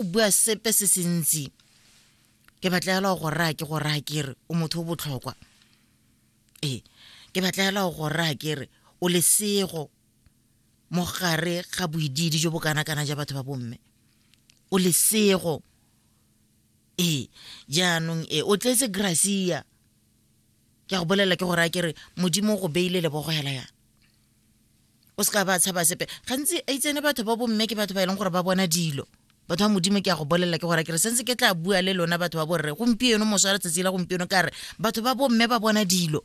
o bua sepe se se ntsi ke batla fela go raya ke go raya ke re o motho o botlhokwa ee ke batla fela go raya ke re o lesego mo gare ga boididi jo bo kana-kana ja batho ba bomme o lesego ee jaanong e o tletse gracia ke a go bolelela ke go raya ke re modimo o go beile lebogo fela yana o se ka ba tshaba sepe gantsi a itsene batho ba bomme ke batho ba e leng gore ba bona dilo batho ba modimo ke ya go bolelela ke gore kere sentse ke tla bua le lona batho ba borre gompieno moso wa letsatsi la gompieno ka re batho ba bomme ba bona dilo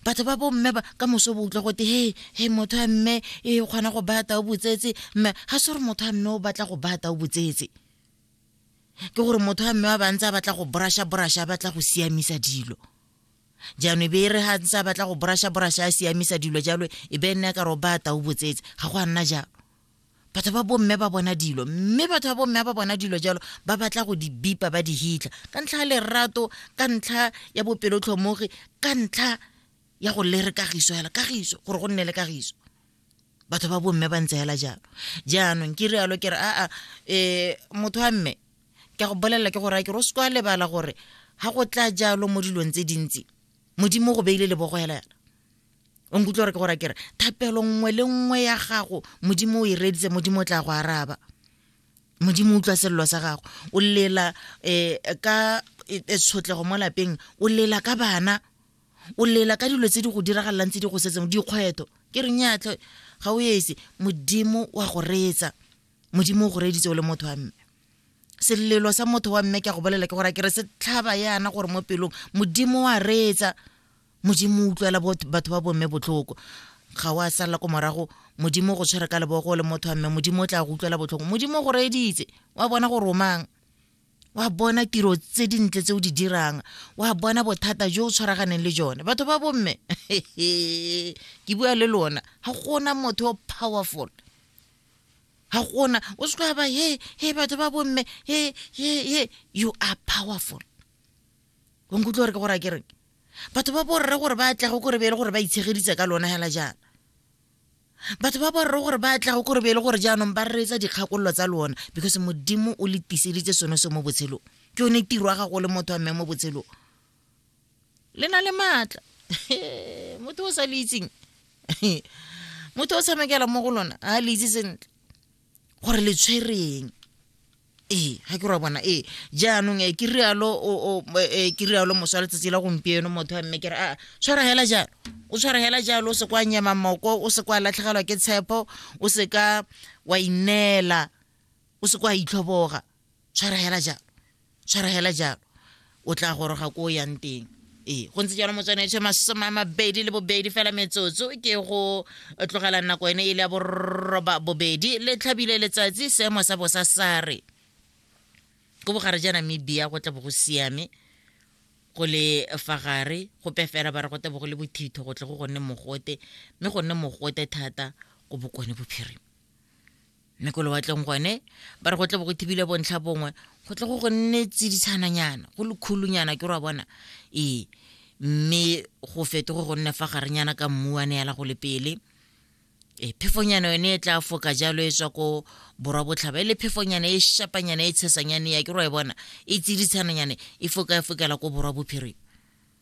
batho ba bomme ba ka moso bo utlwa gote he he motho a mme e kgona go baya tao botsetse mme ga se gore motho a mme o batla go baya tao botsetse ke gore motho a mme wa bantse a batla go brasha brasha a batla go siamisa dilo jaanong e be e re ga ntse a batla go borasha-borasha a siamisa dilo jalo e be e nna ka ro ba tau botsetse ga go a nna jalo batho ba bomme ba bona dilo mme batho ba bomme ba bona dilo jalo ba batla go di bipa ba di hitlha ka ntlha ya lerato ka ntlha ya bopelotlhomogi ka ntlha ya go lere kagiso fela kagiso gore go nne le kagiso batho ba bomme ba ntse hela jalo jaanong ke rialo ke re aa um motho wa mme ke go bolelela ke gore a ke ro se kwa lebala gore ga go tla jalo mo dilong tse dintsi modimo go beile lebogo hela yana o nkutlwa gore ke gore a kere thapelo nngwe le nngwe ya gago modimo o e reditse modimo o tla go araba modimo utlwa selelo sa gago o lela um ka e, e, tshotlego mo lapeng o lela ka bana o lela ka dilo tse di go diragalelang tse di go setseng dikgweto ke re nyatlhe ga o ese modimo wa go reetsa modimo o go reeditse o le motho wa mme selelo sa motho wa mme ke a go bolela ke gore ke re se tlhaba yana gore mo pelong modimo wa reetsa modimo o utlwela batho ba bomme botlhoko ga wa sala ko morago modimo go tshwere ka lebogo le motho wa mme modimo o tla go utlwela botlhoko modimo go reeditse wa bona go romang wa bona tiro tse dintle tse o di dirang wa bona bothata jo o tshwaraganeng le jone batho ba bomme ke bua le lona ga gona motho o powerful ga gona o se tloga ba he he batho ba bomme he he he you are powerful o nkutlwa gore ke gore a ke reng batho ba borre gore ba atlege kore be e le gore ba itshegeditse ka lona hela jaana batho ba borre gore ba tlago kore be e le gore jaanong ba reetsa dikgakololo tsa lona because modimo o le tiseditse sone se mo botshelong ke yone tiro ya gago le motho wa mme mo botshelong le na le maatla motho o sa le itseng motho o tshamekela mo go lona a le itse sentle gore le tshwereng ee ga ke ra bona ee jaanong e ke rialo e, ke rialo moswa letsatsi la gompieno motho wa mme ke re a tshwara hela jalo o tshwara hela jalo o se kwa nyema moko o se kwa latlhegelwa ke tshepo o se ka wa ineela o se kwa itlhoboga tshwara hela jalo tshwara hela jalo o tla goroga ko o yang teng ee go ntse jalo motswane etsho masome a mabedi le bobedi fela metsotso ke go tlogela nako ene e le ya borroba bobedi le tlhabile letsatsi seemo sa bosa sa re ko bogare ja namibia go tla bo go siame go le fa gare go pefela ba re go tla bo go le bothitho go tle go gonne mogote mme go nne mogote thata ko bokone bophirima mme ko lewatleng gone ba re go tle bo go thibile bontlha bongwe go tle go go nne tsiditshananyana go lekhulunyana ke ra bona ee mme go fetoge go nne fa garenyana ka mmu wa neela go le pele e phefonyana yone e tla foka jalo e tswa ko borwa botlhaba e le phefonyana e shapanyana e tshesanyane ya ke ro e bona e tsiditshananyane e foka e fokela ko borwa bophirima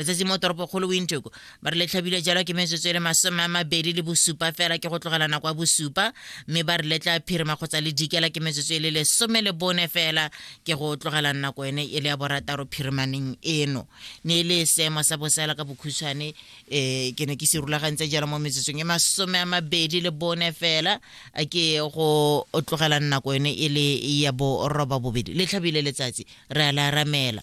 letsatsi mo toropokgolo windhoek ba re le tlhabile jalo ke metsotso e le masome a mabedi le bosupa fela ke go tlogela nako ya bosupa mme ba re letla phirima kgotsa le dikela ke metsotso e le lesome le bone fela ke go tlogela nako ene e le ya borataro phirimaneng eno ne e le seemo sa bosela ka bokhutshwane um ke ne ke se rulagantse jalo mo metsotsong e masome a mabedi le bone fela ke go tlogela nako ene e le ya boroba bobedi le tlhabile letsatsi re a le aramela